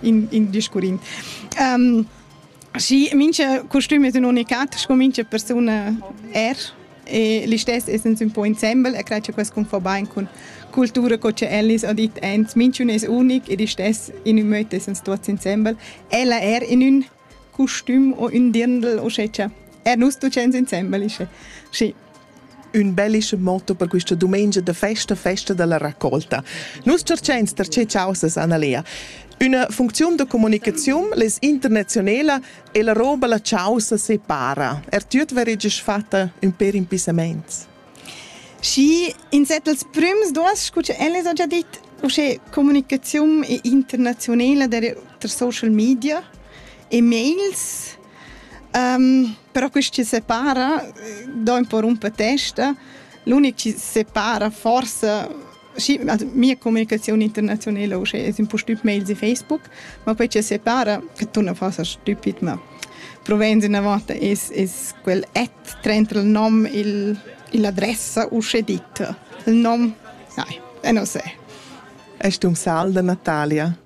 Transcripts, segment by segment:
in, in discurrin. Um, și mince costüm es ün unicat sco mince persuna er e listess essens un po insembel e cred che quest cum fa bain con cultura co che Ellis ha dit ens minchun es unic ed istess in ün möt essens tuots insembel ella er in ün custüm o ün dirndl uschè cha er nus tuchans insembel ische. Schi. Ün bellische motto per quista dumengia da festa, festa dalla raccolta. Nus cerchains tar che chausas, Annalea. Üna funcziun da comunicaziun, les internazionela, e la roba la chausa separa. Er tüt vereges fatta ün per impissamaints. Schi in set dals prüms duos, scu cha el esa già dit, uschè comunicaziun internaziunela der ter social media e mails. Um, però quist chi separa do ün po rumpa testa. L'unic chi separa forsa Sì, also mia comunicazione internazionale es ün po stüb mails e Facebook, ma quei che separa, che tu non fas stüpid, ma provends üna volta es, es quel at trenta il nom, il, l'adressa usce dit. Il nom, sai, e non se. Es tu um sal da Natalia?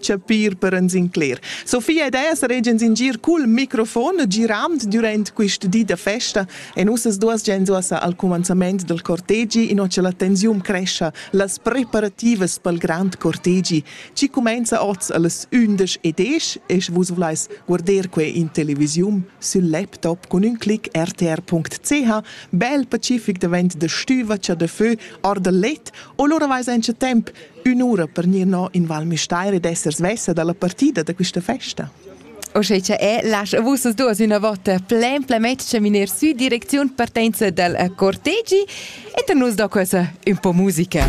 chapir per ans incler. Sofia ed ella regian in gir cul microfon girand durant quist di da festa e nossas duas gens uossa al cumanzament del cortegi inò che la tensiun crescha, las preparativas pel grand cortegi, chi cumenza oz allas undisch e desch e sche vus volais guarder que in televisiun sül laptop cun ün clic rtr.ch, bel pacific davent da stüva cha da fö or da let o lura vais auncha temp ün'ura per gnir no in Val Müstair ed esser svessa da la partida da quista festa. O sche cha è, lascha vus duos üna vota plain plemetsch miner sü direcziun partenza dal cortegi e per nus do questa un po musica.